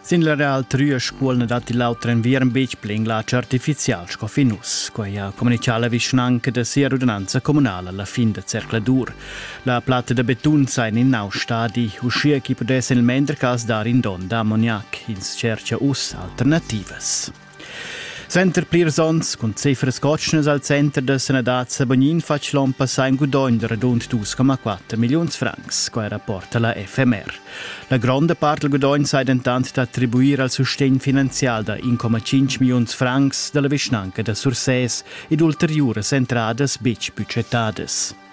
Sin la Real Trüa Scuol na datti l'auter enviern betg pli in glatsch artifizial sco fin uss. Quai ha communitgà la vischnanca da sia rudinanza communala la fin da zercladur. La platta da betun sa en in nau stadi, uschia ch'i pudess il mender cas dar in don da ammoniac. Ins tschertgia uss alternativas. Center plirs onns cun cifras cotschnas al center da sanadad Sabognin fatg l'on passà in gudogn da radund 2,4 milliuns francs, quai rapporta la FMR. La gronda part dal gudogn sai dentant attribuir al sustegn finanzial da 1,5 milliuns francs da la vischnanca da Sursès ed ulteriuras entradas betg budgetadas.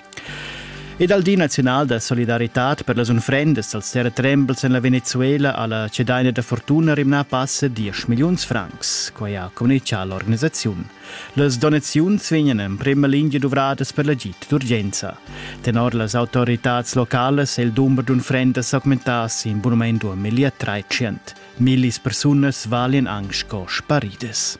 Ed al Di nazional da solidaritad per las unfrendas als terratrembels en la Venezuela ha la cedaina da fortuna rimnà pass a 10 milliuns francs. Quai ha communitgà l'organisaziun. Las donaziuns vegnan en prima lingia duvradas per l'agid d'urgenza. Tenor las autoritads localas è il dumber d'unfrendas augmentà sin bunament da 1300. Millis persunas valian anc sco sparidas.